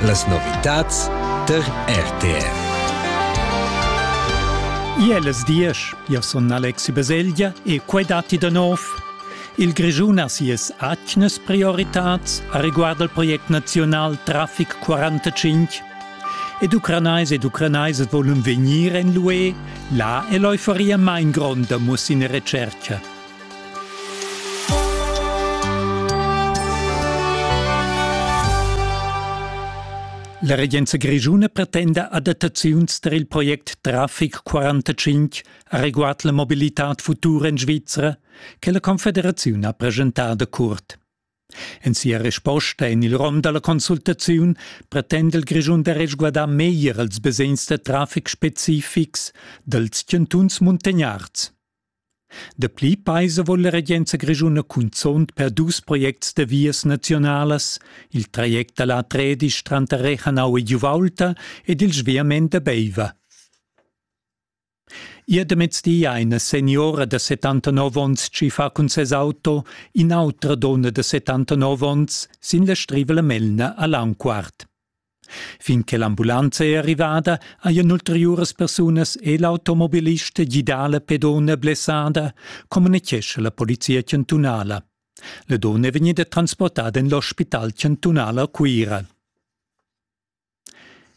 Las novitads tar RTR. Iellas diesch, io sun Alexi Baselgia e quai datti da nov. Il Grischun ha sias atgnas prioritats a riguard al project naziunal Traffic 45. Ed ucranais ed ucranaisas volun vegnir en l'UE, là è l'euforia main gronda muss in recerca. La regenza grischuna pretenda adattaziuns tar il project Traffic 45 areguard la mobilitad futura en Svizra che la Confederaziun ha preschentado curt. En sia risposta en il rom dalla consultaziun pretende il Grischun da resguardar meglier els basegns da traffic specifics dals chantuns muntagnards. Dapli paisa vul la regenza grischuna cunzunt per dus projects da vias naziunalas, il traject da la Tredisch tranter Rechanau e Giuvaulta ed il sviament da Beiva. Ier da mezdi ha ina seniora da 79 onns tschiffà cun ses auto in'autra donna da 79 onns sin la Strivela Melna a Langquart. Fin che l'ambulanza è arrivada, hajan ulteriuras persunas e l'automobilista gidà la pedona blessada, communitgescha la polizia chantunala. La donna è vegnida transportada en l'ospital chantunal a Cuira.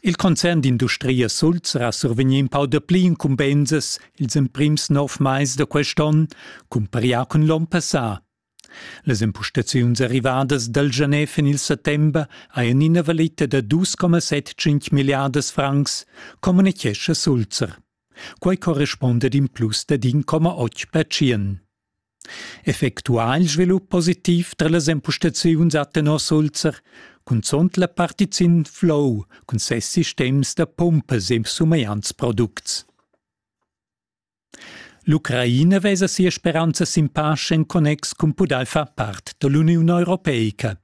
Il concern d'industria Sulz ha survegnì in pau dapli incumbensas ils emprims nov mais da quest'onn, cumparià cun l'onn passà. Las empustaziuns arrivadas dal gener fin il settember hajan ina valita da 2,75 milliardas francs, communitgescha Sulzer. Quai correspunda ad in plus dad 1,8 percent. Effectuà il svilup positiv tra las empustaziuns ha tenor Sulzer cunzunt la partizin Flow cun ses sistems da pumpas e sumegliants products. L'Ucraina vesa sia speranza sin pace en connex cun pudair far part da l'Uniun europeica.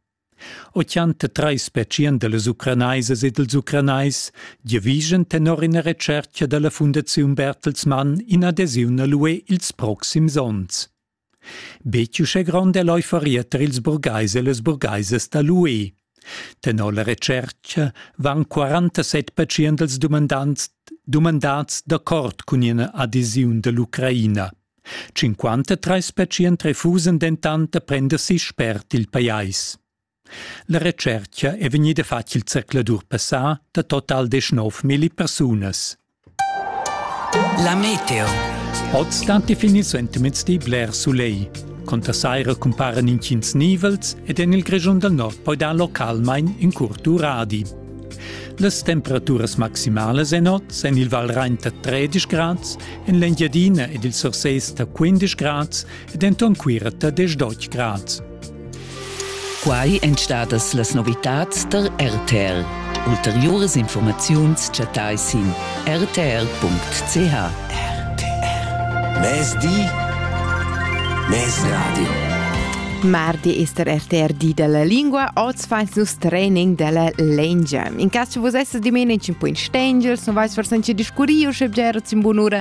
83 specien da las ucranaisas e dals ucranais giavischan tenor ina retschertga da la Fundaziun Bertelsmann in'adesiun a l'UE ils proxims onns. Betg uschè grond è l'euforia tar ils burgais e las burgaisas da l'UE. Tenor la retschertga van 47 pertschient dumandants dumandats d'accord cun ina adesiun da l'Ucraina. 53 pertschient refusan dentant da prender si spert il pajais. La retschercha è vegnida fatg il zercladur passà da total deschnovmilli persunas. La meteo. Oz stan definir sentiments di bler soleil. Conter saira cumparen intgins nivels ed en il Grischun dal nord poi dar localmain in curt uradi. Las temperaturas maximalas en oz en il Valrain da 13 grads, en l'Engiadina ed il Surses da 15 grads ed enton Cuira da 18 grads. Quai èn stadas las novitads tar RTR. Ulteriuras informaziuns chattai sin rtr.ch. RTR. Mezdi. Mezradio. Mardi ist der RTR di della lingua, oz feins nus training della lengia. In cas che vos essas dimene in po in stengel, non vais forse anche discurriu, sche bgera in bunura,